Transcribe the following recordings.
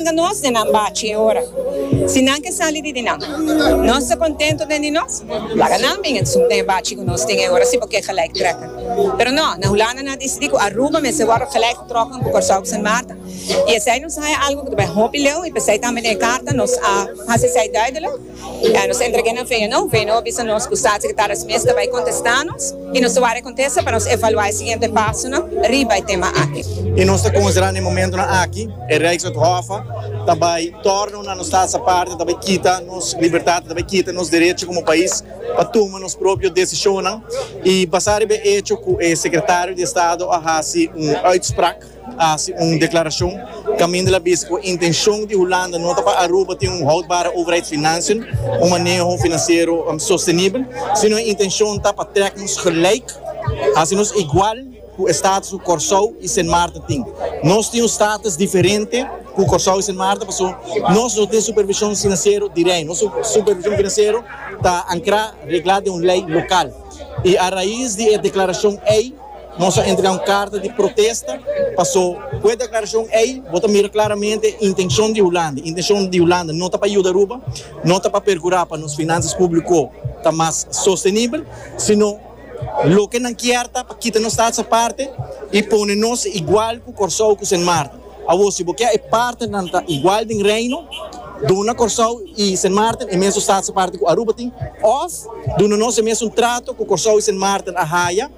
Manga nos den nan bachi e ora. Si nan ke sali di di nan. Nos ta kontentu den di nos. Laga nan bin esun den e bachi ku nos tin e ora si bo ke gelijk trèk'en. Pero no, na Hulanda nan a disidí ku Aruba mester wòrdu gelijk tròk'en ku Kòrsou ku Sint Maarten. I esei nos a haña algu ku ta bai hopi leu i p'esei tambe den e karta nos a hasi esei duidelik. Bai nos entrega nan veno, veno a bisa nos cu Staatssecretaris mes ta bai contesta nos y nos ta wari e contesta pa nos evalua e siguiente pasonan riba e tema aki. Y nos ta considera na e momentonan aki e Rijkswethofe ta bai torna una nos tas aparte, ta bai kita nos libertad, ta bai kita nos derecho como pais pa tuma nos propio decisionnan y basa riba e hecho cu e Secretario di Estado a haci un uitspraak. hasi un deklarashon kaminda la bisa ku e intenshon di Hulanda no ta pa Aruba tin un houdbare overheidsfinansien, un maneho finansiero sostenibel, sino e intenshon ta pa trek nos gelijk, hasi nos igual ku e status ku Kòrsou i Sint Maarten tin. Nos tin un status diferente ku Kòrsou i Sint Maarten paso nos no tin supervishon finansiero di Rei. Nos supervishon finansiero ta ankrá, reglá den un lei lokal. I a rais di e deklarashon ei. Nos a entrega un carta di protesta paso cu e declaracion ey bo ta mira claramente intencion di Hulanda. Intencion di Hulanda no ta pa yuda Aruba, no ta pa percura pa nos financias publico ta mas sostenibel, sino loke nan kier ta pa kita nos tax aparte y pone nos igual cu Corsou cu Sint Maarten. Awor, si bo ke e partenan ta igual den Reino, duna Kòrsou i Sint Maarten e mesun status aparte ku Aruba tin, òf duna nos e mesun trato ku Kòrsou i Sint Maarten a haya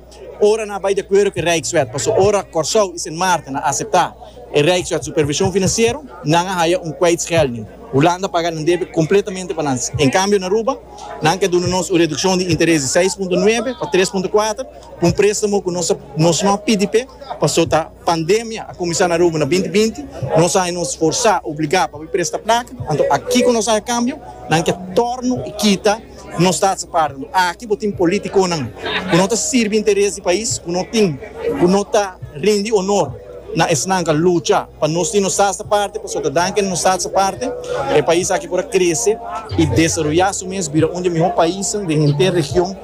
ora nan a bai di akuerdo ku e Rijkswet. Pasobra ora Kòrsou i Sint Maarten a aseptá e Rijkswet supervishon finansiero, nan a haya un kwijtschelding. Hulanda a paga nan debe kompletamente pa nan. En kambio na Aruba, nan ke duna nos un redukshon di interes di seis punto nuebe pa tres punto kuater pa un préstamo ku nos no a pidi p'e paso ta Pandemia a kuminsá na Aruba na binti binti. Nos a haña nos forsá, obligá, pa bai presta plaka. Anto aki ku nos haña kambio, nan ke tòrnu i kita nos tats apart. Anto aki bo tin politikonan ku no ta sirbi interes di pais ku no tin, ku no ta rindi onor na esnan ku a lucha pa nos tin nos tats aparte. Pasobra dan ke nos tats aparte e pais aki por a krese i desaroyá su mes, bira un di e mihó paisnan den henter region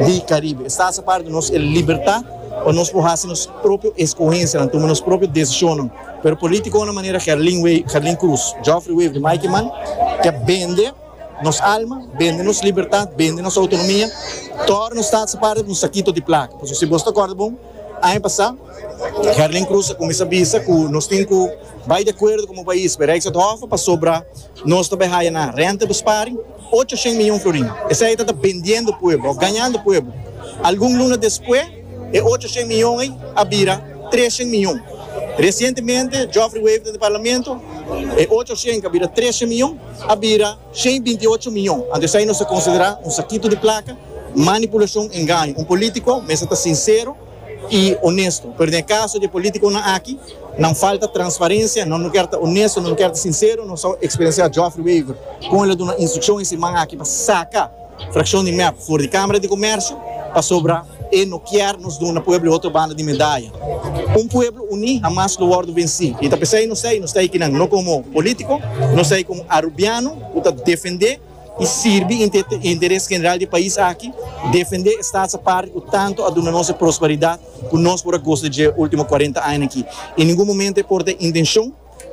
di Karibe. Es tats aparte nos e libertat. pa nos por haci nos propio escogencianan, tuma nos propio decisionnan, pero politiconan manera Gerlin Wever, Gerlin Cruz, Geoffrey Wever y Mikey Mann ta bende nos alma, bende nos libertad, bende nos autonomia, tora nos sta haci parti di un sakito di placa. Pasobra si bos ta acorda bon, aña pasa Gerlin Cruz a cuminsa bisa cu nos tin cu bay di acuerdo como pais, pero ex het hof a pasobra nos ta bay haya nan renta besparing, Ocho shen miyon florin. Esei ta ta bendiendo pueblo of gañando pueblo. Algun luna despues e ocho shen miyon ei a bira tres shen miyon. Recientemente Geoffrey Wever ta den parlamento, e ocho shen cu a bira tres shen miyon a bira shen y binti ocho miyon. Anto esei nos ta considera un sakito di placa, manipulacion, engaño. Un politico mester ta sincero. i onesto, pero den e kaso di e politikonan aki, nan falta transparensia, nan no kier ta onesto, nan no kier ta sinsero, nos a eksperensiá Geoffrey Wever kon el a duna instrukshon e siman aki pa saka frakshon di mep for di Kámara di Komèrsio pasobra e no kier nos duna pueblo e otro banda di medaya. Un pueblo uní hamas lo wòrdu vensí i ta p'esei nos ta ei, nos ta ei kinan, no komo polítiko, nos ta ei komo arubiano ku ta defendé, i sirbi interes general di pais aki, defendé e stats aparte ku tantu a duna nos e prosperidat ku nos por a gosa di dje último kuarenta aña aki. I ningun momento e por ta e intenshon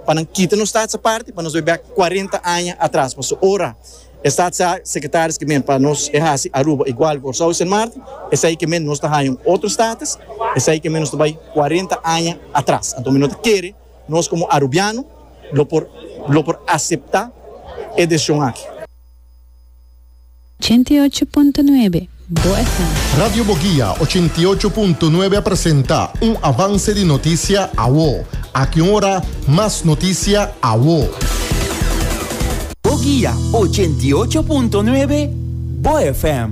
pa nan kita nos stats aparte pa nos bai bèk kuarenta aña atras. Pasobra ora e stats sekretaris ke men pa nos e hasi Aruba igual Kòrsou i Sint Maarten, esei ke men nos ta haña un otro status, esei ke men nos ta bai kuarenta aña atras. Anto mi no ta kere. Nos komo Arubiano lo por lo por aseptá e desishon aki. Ochenta i ocho punto nuebe Bo FM. Radio Boguia ochenta i ocho punto nuebe a presenta un avance di notisia awo. Aki un ora mas notisia awo. Boguia ochenta i ocho punto nuebe Bo FM.